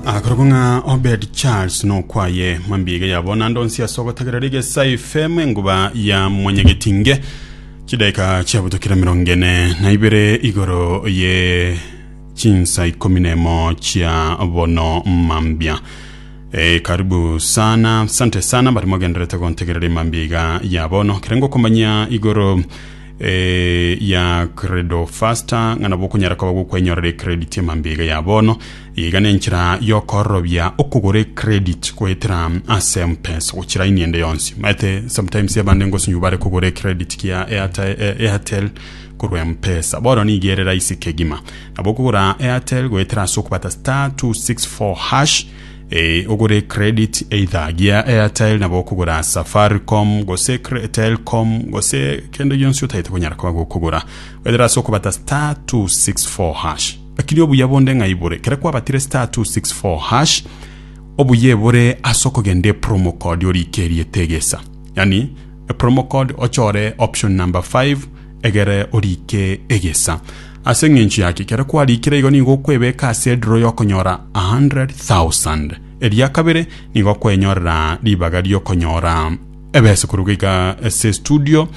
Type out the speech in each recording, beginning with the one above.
Akorokwa ng'a Obed Charles nokwaye mambige yabo naende onsi ase ogotagerera egesa efemu enguba ya mwanyagetinge chidaika chiabutokire mirongo ene na ibere igoro ye chinsa ikomi nemo chia bono mambia Eh, karibu sana sante sana bari mogenderete gontegerera emambia iga ya bono kerenge okomanya igoro eh, ya credo faster ng'ana bokonyara koba gokwenyorera credit emambia iga ya bono Iga nenchera yokororobia okogora ecredit goetera ase mpesa gochia line ende yonsi. Maete sometimes abande ngosunyu bare kogora ecredit kia Airtel korwa mpesa. Bono niga ere raisi kegima. Nabo okogora Airtel goetera ase okobata star 264 hash eh, ogore credit either gia Airtel nabo okogora Safaricom gose Telcom gose kende gionsi otagete konyara koba gokogora. Goetera ase okobata star 264 hash. Lakini obuya bonde ng'a ibore, kere kwabatire star 264 hash obuya ebore ase okogenda e promo code orike erieta egesa yaani e promo code ochore option number 5 egere orike egesa ase eng'encho yaki kere kwarikire igo nigo okwebeka ase edraw yokonyora 100,000 eria kabere nigo okwenyorera ribaga riokonyora Ebese koruga iga ase estudio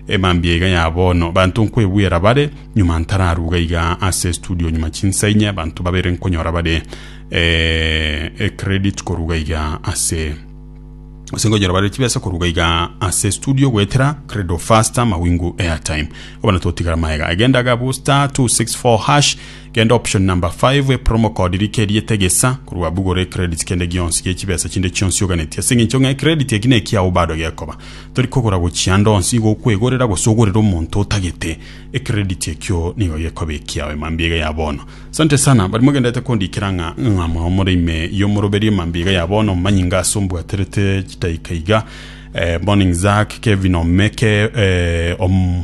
e mambia iga ya bono banto nkwebwera bare nyuma ntararuga iga ase estudio nyuma chinsa inye banto babere nkonyora bare eh, e credit koruga iga ase ase nkonyora bare chibesa koruga iga ase estudio gwetera credo faster mawingu airtime abana totigara maega egenda gabu star 264 hash Genda option number five e promo code rika eriete egesa korwa abwo gore credit kende gionsi gie chibesa chinde chionsi oganeti ase engencho ng'a ecredit eki nekiao bado gekoba tori kogora gochia ande onsi igo okwegorera gose ogorere omonto otagete ecredit ekio nigo gekoba ekiao emambiaiga ya bono Sante sana bari mogenderete kondikera ng'a ng'a mwao more ime y'omoroberi emambiaiga ya bono manyinga ase ombwaterete chidaika iga eh, morning Zack Kevin Omeke eh, om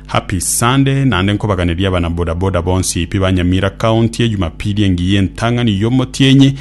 Happy Sunday, naende nkobaganeria abana boda boda bonsi pi ba Nyamira County ejumapili engiya entang'ani y'omotienyi.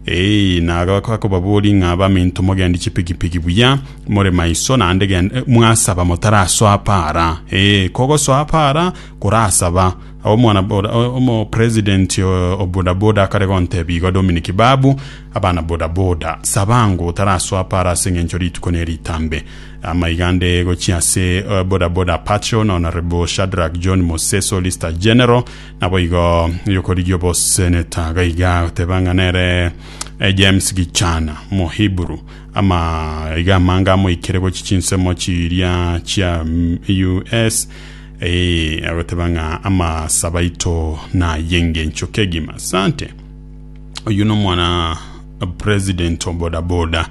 Eeh nagaaka kobabori ng'a baminto mogendi chipigipigi buya, more maiso naende gen mwasaba motarasoa para. Eeh kogosoa para korasaba. Omwana boda omo president o boda boda akare gontebia igo Dominic Babu, abana boda boda, saba ng'o otarasoa para ase eng'encho rituko neritambe. Amaiga nde gochia ase bodaboda Patrol na Honorable Shadrack John Mose Solicitor General naboigo yokorigia oboseneta gaiga goteba ng'a nere eh, James Gichana Mohiburu ama iga amange amoikire gochi chinsemo chiria chia mm, US eh, agoteba ng'a amasaba ito nayengencho kegima sante oyu nomwana president obodaboda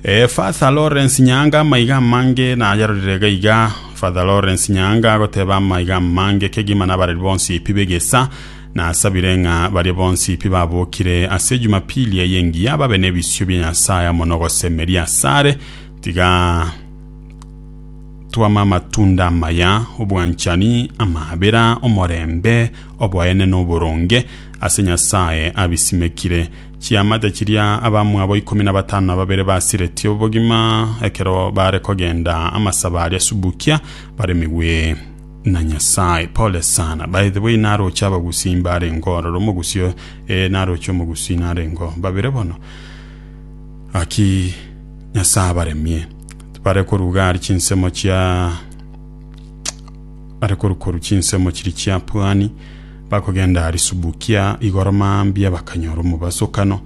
Ee, Father Lawrence Nyaanga amaiga amange nayarorire iga iga. Father Lawrence Nyaanga agoteba amaiga amange kegima nabareri bonsi pi b'egeesa, Nasabire ng'a baria bonsi pi babokire ase Jumapili eye engiya babe nebisio bia Nyasae amo nogosemeria asare, tiga twame amatunda amaya, obwanchani, amaabera, omorembe, oboenene, oboronge, ase Nyasae abisimekire. Chiamate chiria abamwabo ikomi na batano na babere basiretie obogima ekero baare kogenda amasaba aria Subukia baremigwe na Nyasae. Pole sana. By the way, naroche abagusii mbarengeo ororo omogusi o- eh, naroche omogusii narengeo babere bono. Aki Nyasae abaremie. Bare koruga ari chinsemo chia are korukoru chinsemo chiri chiapwani Bakogenda Arisubukia, igoro mambia bakanyora omobasokano,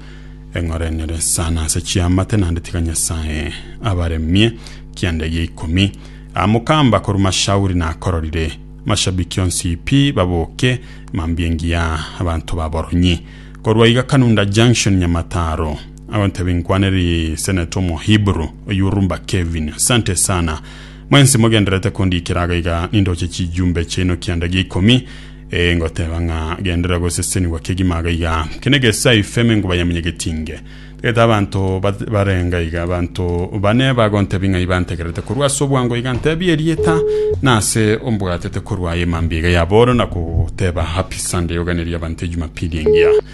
eng'orenere sana ase chiamate, naende tiga Nyasae abaremie kianda egia ikomi. Amokamba korwa Mashauri nakororire, mashabiki onsi pi baboke mambia engiya abanto baboronyi. Korwa iga Kanunda Junction Nyamataro, agonteba inkwaneri Senator omo Hebrew oyurumba Kevin, Asante sana. Mwensi mogendererete kondikera aga iga nindoche chijumbe chiaino kianda gia ikomi, ee, ngoteba ng'a genderera gosesenigwa kegima aga iga, kende gesa ifeme ngobayamunye getinge. Tagete abanto bat- barenga iga, abanto bane bagontebia ng'ai bantegererete korwa ase obwango iga, ntebia erieta na ase ombwatete korwa aye mambia iga ya booro, na kogoteba, Happy Sunday, oganeria abanto Ejumapili engiya.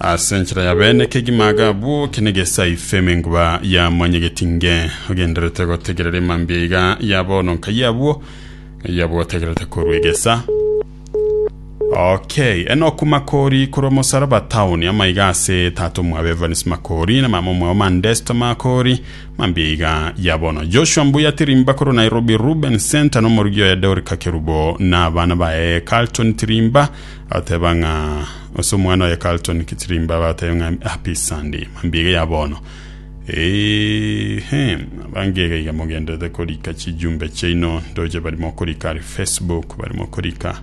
Ase enchera ya bene kegima aga abwo kenegesaife emenguba ya mwanyegeti nge ogenderete gotegerera emambia iga ya bono nkai abwo eyabwo otegerete korwa egesa Okay, Enoku Makori korwa Mosaraba Town amaiga ase tata omwabo Evans Makori na mama omwabo Mandesto Makori mambia iga ya bono Joshua Mbuya Tirimba korwa Nairobi Ruben Center na omorugi oye Dorika Kerubo na abana baye Carlton Tirimba Ateba ng'a ase omwana oye Carlton Kitirimba batebe ng'a happy Sunday mambia iga ya bono. Eehem abange iga iga mogenderete korika chijumbe chiaino ndoche barimo korika ari Facebook barimo korika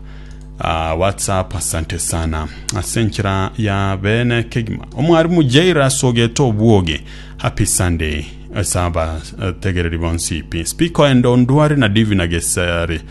ah, WhatsApp asante sana ase enchera ya bene kegima omwarimu Jair asogete obwoge happy Sunday ase abategereri bonsi ipi speaker ende ondware na Divina Gesare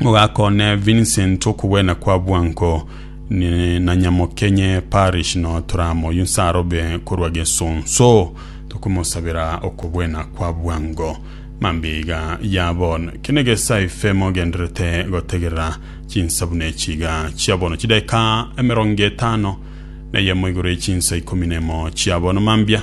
Mogakone Vincent okobwena kwa bwango ne- na Nyamokenye Parish no toramoywe nse arobe korwa Gesonso tokomosabera okobwena kwa bwango. Mambeiga ya bono kene gesaife mogenderete gotegerera chinsabu ne chiga chia bono chidaeka emerongo etano na eyemo igoro ye chinsa ikomi nemo chia bono mambia